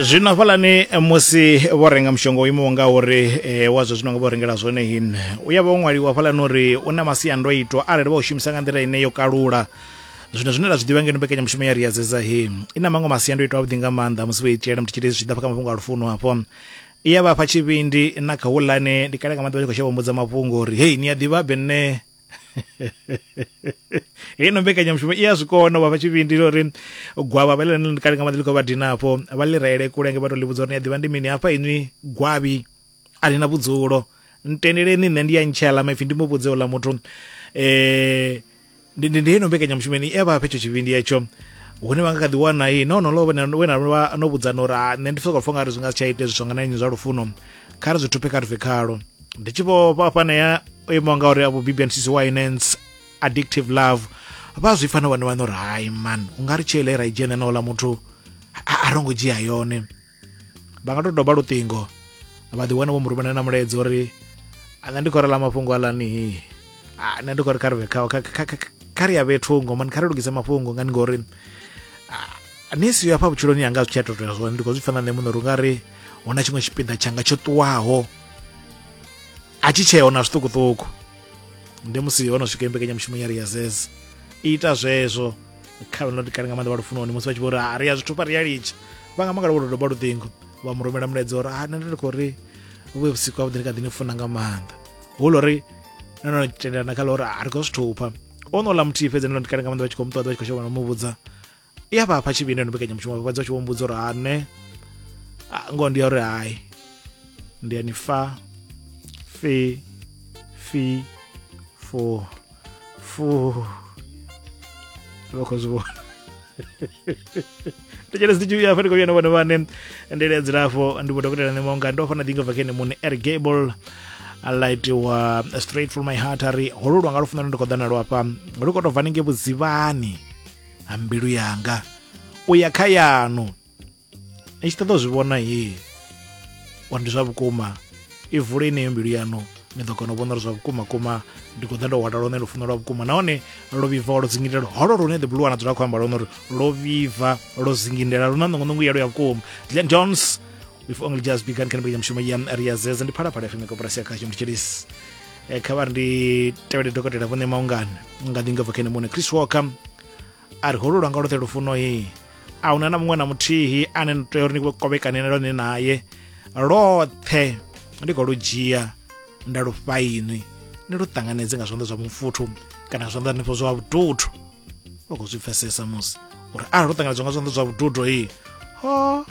zwino hafhalani musi vho renga mushonga o imaho nga uri e, wa zwo zwino nga vho rengela zwone hin u ya vha o ṅwaliwa hafhalani uri u na masiandoitwa arali vha u shumisa nga nḓila ine yo kalula zwino zwine ra zwi ḓivha ngeno mbekanyamushumo ya riyadzedza he i na maṅwe masiandoitwa avhuḓi nga maanḓa musi vho i dzhiela muthu tshitei zwi tshi ḓa fha kha mafhungo a lufuno hafho i ya vhafha tshivhindi na kha hulane ndi kale nga maḓuvha tshi khou shavha mbudza mafhungo uri hei ni a ḓivha be nṋe heyi no mbekanyamushumo i a zwi kona vha fha tshivhindi ḽa uri gwavha vha ḽi kale nga maḓi ḽi khou vha dina hafho vha ḽi reele kulenge vha tou ḽi vhudza uri ni a ḓivha ndi mini hafha inwi gwavhi a ḽi na vhudzulo ntendeleni nṋe ndi ya ntshela maipfhi ndi mu vhudze uḽa muthu um ndi ndi ndi heyi no mbekanyamushumo ni e vha fha hetsho tshivhindi hetsho hune vha nga kha ḓi wana i no no lo we na no vhudzana uri nṋe ndi sokou pfha nga ri zwi nga si tsha ita hezwi zwa nga na nnyi zwa lufuno kha ri zwi thupe kha ri bve khalo ndi tshi vho fhafhanea o imaho nga uri avho bibian sisi winans addictive love vha zwi pfana vhone vhane uri hai man u nga ri tsheo ile ra i dzhena na ola muthu a ro ngo dzhia yone vha nga to doba luṱingo vha ḓi wana vho mu rumela na mulaedza uri nṋe ndi khou rela mafhungo alani nṋe ndi khou ri kha ri vhe khawo kha ri ya vhe thungo mani kha ri lugise mafhungo ngani ngori ni siyo afha vhutshiloni yanga zwi tshi a totoya zwone ndi khou zwi pfana nṋe muṋe uri u nga ri huna tshiṅwe tshipiḓa tshanga tsho ṱuwaho a tshi tsheo na zwiṱukuṱuku ndi musi ho no swika mbekanyamushumo ya ria zez ita zwezwo kha no kale nga maanḓa vha lufunoni musi vha tshi vho uri a ri ya zwithu pa ri ya litsha vha nga mangala vho dodoba luṱingo vha mu rumela mulaedza uri a nṋe ndi khou ri vhuye vhusiku ha vhuḓi ndi kha ḓi ni funa nga maanḓa hu lo ri no no tendelana kha ḽa uri a ri khou zwithupha o no ḽa muthihi fhedzi no no kale nga maanḓa vha tshi khou mu ṱoḓa vha tshi khou shavha no mu vhudza i a vha fha tshivhindi no mbekanyamushumo vha fhedza u tshi vho mbudza uri ha nṋe ngoho ndi ya uri hai ndi ya ni fa fi fi fu fu vha khou zwi vhona tshele sitshi ya fani koyana vhone vhane ndele ya dzilafho ndi vho dokotela nṋe maunga ndo fana ḓinga bva kene muṋe ergable alaitiwa straight from my heart ari hololwa nga lufuno lune ndi khou ḓa nalwo afha lu khou tou bva ninge vhudzivhani ha mbilu yanga u ya kha yanu ni tshi ṱoḓa u zwi vhona hii uri ndi zwa vhukuma i vule ineyo mbilu yanu ni ḓo kona u vhona uri zwa vhukuma kuma ndi khou ḓa ndo hwala lone lufuno lwa vhukuma nahone lwo vhibva lwo dzingindela holo lune the blue wana dzula khou amba lone uri lwo vhibva lwo dzingindela lu na ṋongonongo yalo ya vhukuma glen jones we've only just begun kana mbekanya mushumo ya ri ya zeza ndi phalaphala fm ya koporasi ya khasho ndi tshilisi e, kha vha ri ndi tevhele dokotela vhone maungana nga ḓi nga bva kene muṋe chris walker a ri holu lwanga lwoṱhe lufuno he a huna na muṅwe na muthihi ane ni tea uri ni kovhekanene lone naye lwoṱhe ndi khou lu dzhia nda lu fhainwi ni lu ṱanganedze nga zwanḓa zwa mufuthu kana zwanḓa nifho zwa vhututhu vha khou zwi pfesesa musi uri arali lu ṱanganedzwa nga zwanḓa zwa vhututhu hei ho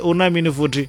hu na mini futhi